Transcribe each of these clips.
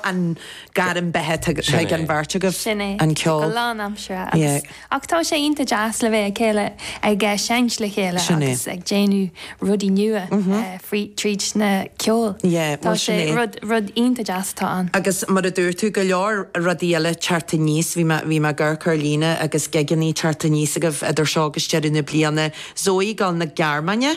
an gairm beatha ag an bheirt agaibh, an ceol. Sin é, go lánaimseartha agus, ach tá sé iontach deas le bheith le chéile, ag seinnt le chéile agus ag déanamh rudaí nua tríd na ceol. Tá sé rud, rud iontach deas atá ann. Agus mar a dúirt tú, go leor rudaí eile teacht aníos, bhí mé, bhí mé ag amharc ar líne agus gigeannaí teacht aníos agaibh idir seo agus deireadh na bliana, Zoe, gabháil 'na Gearmáine?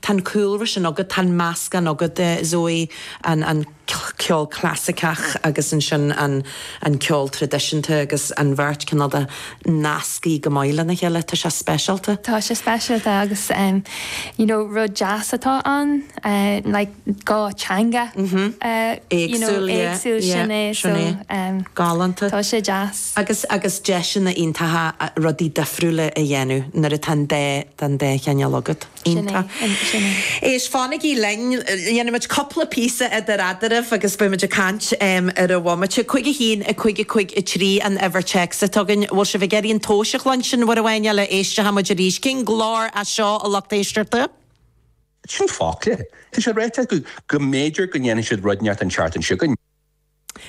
Tá an cúlra sin agat, tá an meascán agat, a Zoë, an ceol clasaiceach agus ansin an ceol traidisiúnta agus an bheirt cineál de nasctha go maith lena chéile. Tá sé speisialta. Tá sé speisialta agus you know rud deas atá ann like dhá teanga éagsúil sin é so galánta tá sé deas. Agus agus deiseanna iontacha rudaí difriúla a dhéanamh nuair atá an dá an dá chineál agat. Sin é, sin é. Éist, fanaigí linn, dhéanfaimid cúpla píosa idir eadraibh agus beimid ag caint ar an bhomaite. Cúig a haon, a cúig, a cúig a trí an uimhir téacsa atá againn. Bhfuil sibh ag iarraidh an tomhas a chluinstin, uair amháin eile, éisteochaidh muid arís? Cén glór é seo, a lucht éisteachta? Sin fágtha. Tá sé ráite acu go mb'fhéidir go ndéanfaidh siad rud inteacht an tseachtain seo chugainn.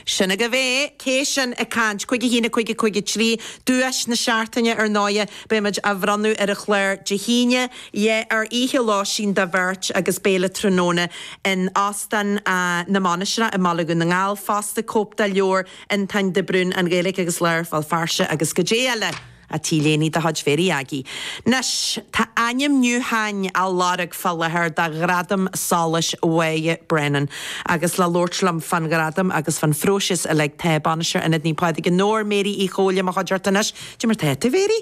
Sin agaibh é, cé sin ag caint? Cúig a haon a Cúig a Cúig a Trí, Duais na Seachtaine ar ndóighe, beidh muid á bhronnadh ar an chlár Dé hAoine, ie ar oíche lóistín do bheirt agus béile tráthnóna in Óstán na Mainistreach i mBaile Dhún na nGall fosta, cóip de leabhar Fhionntáin de Brún, An Ghaeilge agus Learpholl, Feirste agus goidé eile! Ach t-léine de chuid Mhary Aggie. Anois, tá ainmniúcháin á lorg fá láthair do Ghradam Solais Mhoya Brennan agus le labhairt liom fán Ghradam agus fán phróiseas uilig tá Bainisteoir Ionad Naomh Pádraig i nDobhar, Mary Uí Chomhaill i mo chuideachta anois. Goidé mar tá tú, a Mhary.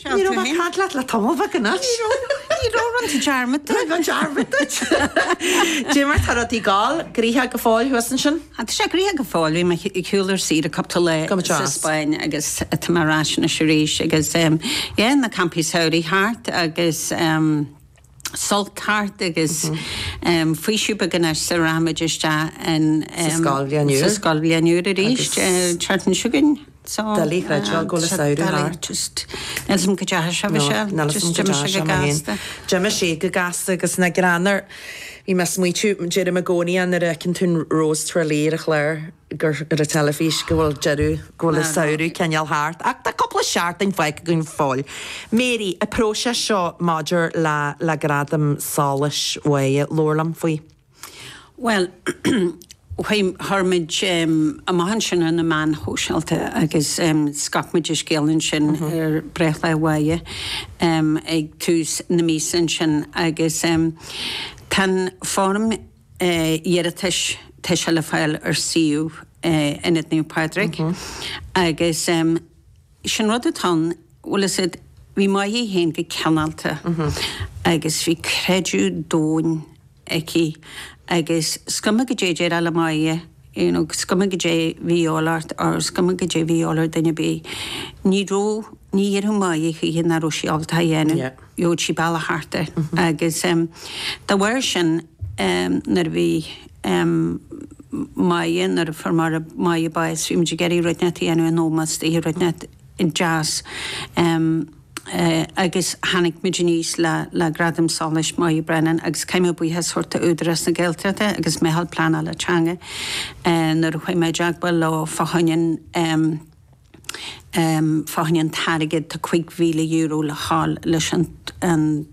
Ní raibh mé ag caint leat le tamall bheag anois. Ní raibh, ní raibh, rinne tú dearmad duit. Rinne mé dearmad duit. Goidé mar tá rudaí ag dul, gnoitheach go fóill thuas ansin? Ach tá sé gnoitheach go fóill. Bhí mé ar shiúl ar saoire cúpla lá sa Spáinn agus tá mé ar ais anois arís agus yeah, na campaí samhraidh thart agus Sult thart agus faoiseamh beag anois sula rachaidh muid isteach sa scoilbhliain úr arís, an tseachtain seo chugainn. So, doiligh a chreidbheáil go bhfuil an samhradh doiligh thart. just níl a fhios agam go deas a bhí No, sé, níl a fhios agam just go deas d'imigh sé go mé féin. gasta. D'imigh sé go gasta agus nach greannmhar, bhí mé ag smaoitiú, deirim i gcónaí é nuair a fheiceann tú Rose Tralee ar an chlár gur, ar an teilifís, go bhfuil deireadh, go bhfuil an samhradh cineál thart. Ach tá cúpla seachtain fágtha againn go fóill. Mary, an próiseas seo maidir le, le Gradam Solais Mhoya, labhair liom faoi. Bhuel, chuir muid amach ansin ar na meáin shóisialta agus scaip muid an scéal ansin ar breithlá Moya ag tús na míosa ansin agus tá an foirm iarratais, tá sé le fáil ar suíomh Ionad Naomh Pádraig agus. Is é an rud atá ann, bhfuil a fhios agat, bhí Moya féin go cineálta agus bhí creideamh domhain aici agus is cuma goidé a déarfá le Moya, you know, is cuma goidé bhí a dhíobháil ort or is cuma goidé bhí a dhíobháil ar duine ar bith, ní raibh, ní déarfadh Moya choíche nach raibh sí ábalta a dhéanamh. gheobhadh sí bealach thart air agus dá bharr sin nuair a bhí Moya, nuair a fuair Máire, Moya bás, bhí muid ag iarraidh rud inteacht a dhéanamh in ómós di, rud inteacht deas agus tháinig muid aníos le le Gradam Solais Moya Brennan agus caithfidh mé buíochas a thabhairt do Údarás na Gaeltachta agus Meitheal Pleanála Teanga nuair a chuaigh mé i dteagmháil leo fá choinne an Fá choinne an t-airgead, tá €5,000 le fáil leis an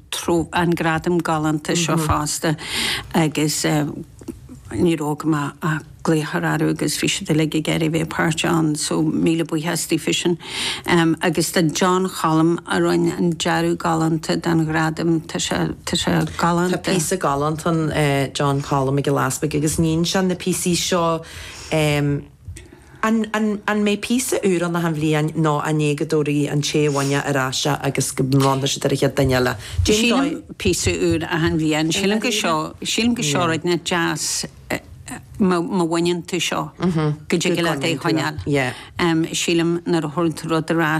gradam galánta seo fosta agus ní raibh agam ach glaoch a chur orthu agus bhí siad uilig ag iarraidh a bheith páirteach ann so míle buíochas daofasan. Agus do John Choilm a rinne an dearadh galánta don ghradam, tá sé galánta. Tá píosa galánta ann, John Choilm Mac Giolla Easpaig agus níonn sé na píosaí seo. An mbeidh píosa úr ann achan bhliain nó an é go dtabharfaidh an té a bhain é ar ais é agus go mbronnfaidh siad ar an chéad duine eile? Sin dóigh. Sílim píosa úr achan bhliain. Sílim go seo, sílim go seo rud inteacht deas má bhaineann tú seo, go dtig leat é a choinneáil. Sílim nuair a thabhrann tú rud ar ais.